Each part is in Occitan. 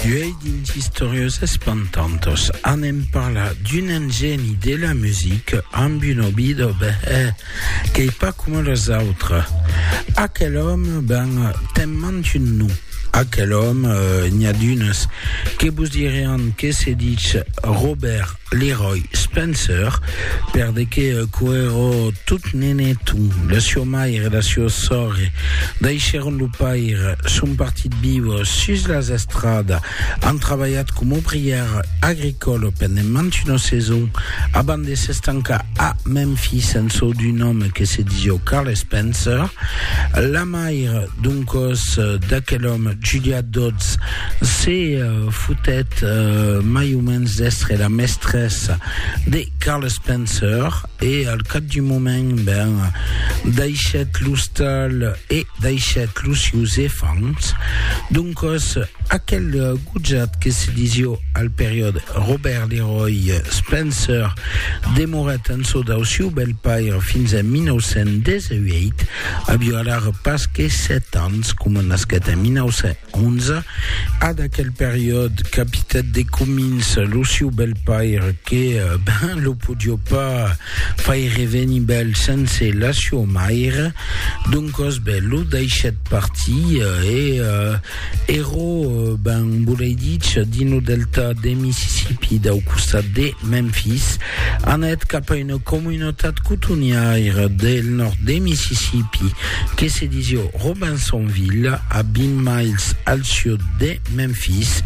Uèi dins Istoriós Espantantos anem parlar d'un engeni de la musica amb un òbi de behèr qu'ei pas coma los autres. Aquel òme, ben, te'n mant un nom. Aquel òme, n'i a d'unes que vos dirián que se ditz Robert Leroy Spencer perdèque quò èrò tot nenet o la siò mair e la siò sòr daishèron lo pair son partit viu sus las estrada an trabalhat com obrièr agricòl pendent mantuna saison abans de s'estancar a Memphis en çò d'un òme que se disió Carl Spencer la mair doncòs d'aquel òme Julia Dodds se fotèt mai o mens d'èstre la mestressa de Carl Spencer e al cap d'un moment ben daishèt l'ostal e daishèt los sieus efants doncas aquel gojat que se disió al periòde Robert Leroy Spencer demorèt en çò dau sieu bèl paire fins en 1918 avió alara pas que sèt ans coma nasquèt en 19 11. A d'aquel periòd capitèt de comins lo siu bèlpaire que ben lo podió pas faire venir bèl sense la siua maire, doncòs ben lo daishèt partir e ero ben volei dich dins lo delta de Mississippi dau costat de Memphis anèt cap a una comunautat cotoniaira del nòrd de Mississippi. que se disio Robinsonville, a 20 miles al sud de Memphis.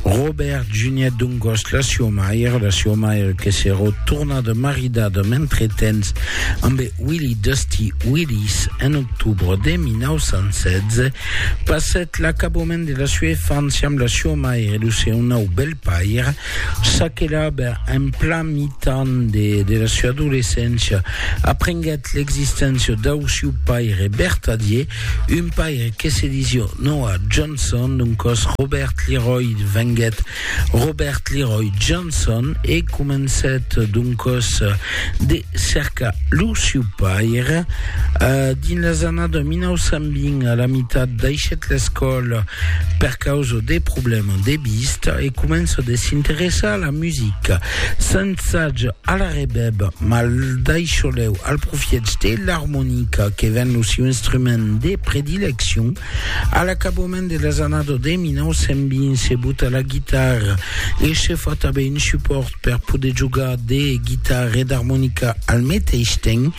Robert Juniat Dungos, la sua mair, la sua mair que s'èra tornada maridada mentretemps ambe Willie Dusty Willis en octubre de 1916, passèt l'acabament de la sua infància amb la sua mair e lo seu nau belpair, Ça que l'Aber, en plan mitan de la sua adolescéncia, aprenguèt l'existéncia dau siu paire vertadier, un paire que se disió Noah Johnson, doncòs Robert Leroy venguèt Robert Leroy Johnson e comencèt doncòs de cercar lo siu paire. Dins las annadas 1920, a la mitat daishèt l'escòla per causa de problèmas de vista e comença de s'interessar a la musica. S'ensaja a la rebèb, mas d'aixolèu al profièch de l'armonica que ven lo siu instrument de predileccion. A l'acabament de las annadas de 1920 se buta la guitarra e se fa tanben un supòrt per poder jogar de guitarra e d'armonica al meteis temps,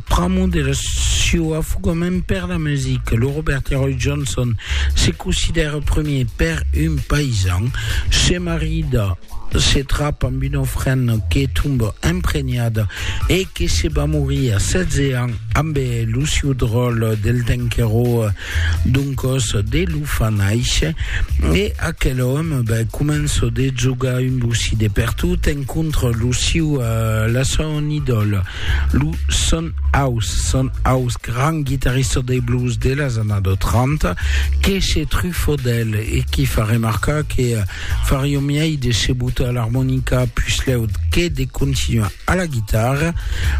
pramo de la sieu afogament per la musica. Lo Robert Leroy Johnson se considèra premier per un paisan, se marida, se trap amb una ofrena que tomba empregnada e que se va morir a 16 ans amb lo sieu dròlle del temps qu'èra Doncòs de lo fa nàisher, e aquel òme ben, comença de jogar un bocí de pertot, encontra lo siu, la son idòla, lo Son House, Son House, grand guitarrista de blues de las annadas 30, que se trufa d'el e qui fa remarcar que fariá miei de se botar l'armonica puslèu que de continuar. a la guitarra,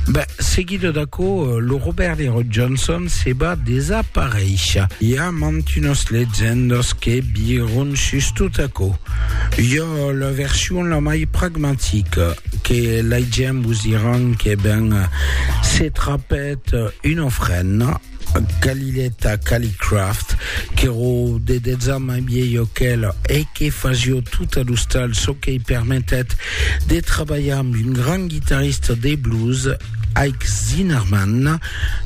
ben, seguido d'aquò, lo Robert Herod Johnson se va desaparéisher. I a mantunas legendas que viron sus tot aquò. Jo la version la mai pragmatica que laigem vos diran que ben se trapèt una ofrenda, Calileta Calicraft, qu'èro de dètz ans mai vielho qu'el e que fasió tot ad ostal, çò qu'ei permetèt de trabalhar amb un grand guitarrista de blues, Ike Zinnerman.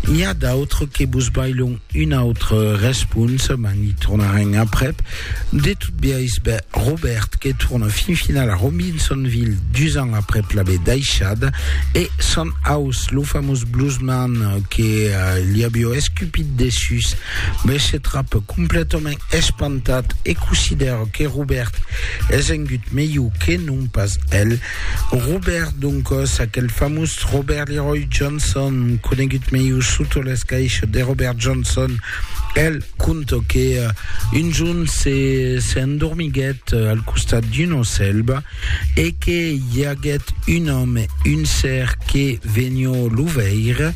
N'i a d'autres que vos bailon un autre respons, mas n'i tornarem aprèp. De tot biais, ben Robert que torna fin final a Robinsonville dus ans aprèp l'aver daishada, e son aus, lo famós bluesman que li avió escupit dessús, ben se trap completament espantat e considèra que Robert es engut melhor que non pas el. Robert, doncas, aquel famós Robert Leroy Johnson, conegut melhor sota l'escaisho de Robert Johnson, Bèl conte que un jorn se, se endormiguèt al costat d'una selva e que i aguèt un òme, un ser que venió lo veire,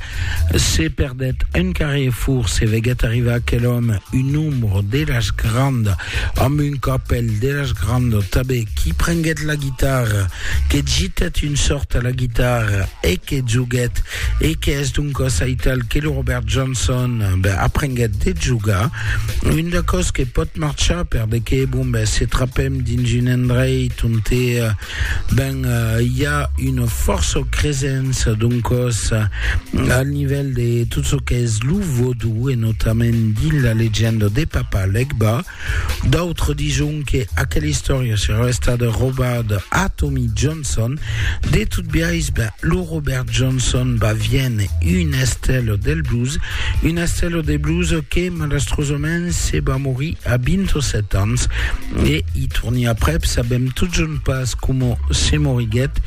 se perdèt un carrefour, se veguèt arribar aquel òme, un ombro de las granda, amb un capèl de las granda tanben, qui prenguèt la guitarra, que gitèt un sòrt a la guitarra e que joguèt e qu'es doncas aital que lo Robert Johnson ben, aprenguèt de jogar. Un de cos que pot marchar per de que, bon, ben, se trapem dins un endreit on te, eh, ben, eh, hi a una força o cresença doncas eh, al nivèl de tot ce que és lo vodou e notament dins la legenda de Papa Legba, D'autres dison que aquela istòria serà estada robada a Tommy Johnson. De tot biais, ben, lo Robert Johnson va viene un estèlo del blues, un estèlo de blues que malastrosament se va morir a 27 ans e i torni aprèp, sabem totjorn pas coma se moriguèt.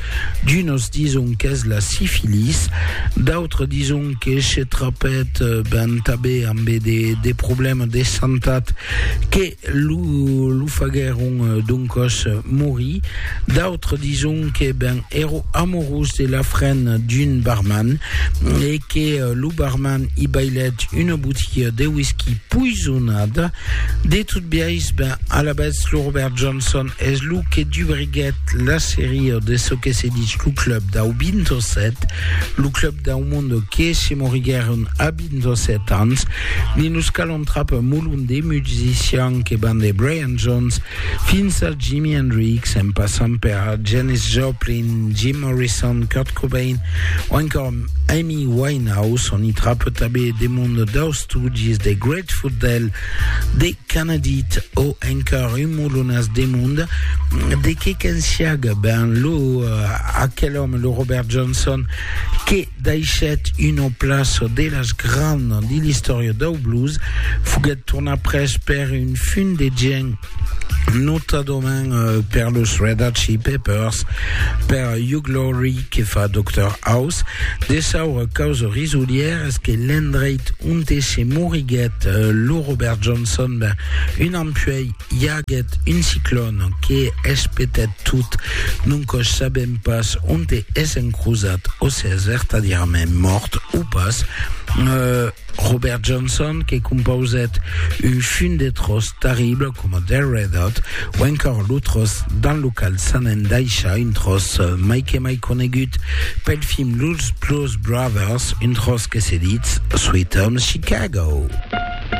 D'unos dison qu'es la sifilis, d'autres dison que se trapèt ben tabé ambe de, de problèmes de santat que lo, lo faguèron d'un còs morir. D'autres dison que ben èro amorós de la fren d'un barman e que lo barman i bailèt una botiga de whisky poisonada. De tot biais, ben alabètz lo Robert Johnson es lo que dubriguèt la seria de çò que se ditz lo club dau 27, lo club dau monde que se moriguèron a 27 ans, ne nos calon trap un molon de musicians que van de Brian Jones fins a Jimi Hendrix en passant per Janis Joplin, Jim Morrison, Kurt Cobain o encòr Amy Winehouse, on i trap tabé de monde daus Stooges, de Grateful Dead, de Canadit o encòr un molonas de monde de que qu'ensiaga ben lo aquel òme, lo Robert Johnson. que daishèt una plaça de las grands de l'istòria dau blues, foguèt tornat pres per un fum de gent, notadament per los Red Hot Chili Peppers, per Hugh Laurie que fa Doctor House. De saura causa risolièra es que l'endreit onte se moriguèt lo Robert Johnson, ben, un an puèi, I aguèt un ciclòn que espetèt tot, non cos sabèm pas onte es encrosat o se es vertadièrament mòrt o pas. Robert Johnson que compausèt un fum de tròç terrible coma The Red Hot o encòr lo tròç dans lo cal s'an endaishat, un tròç mai que mai conegut pel film Los Blues Brothers, un tròç que se ditz Sweet Home Chicago.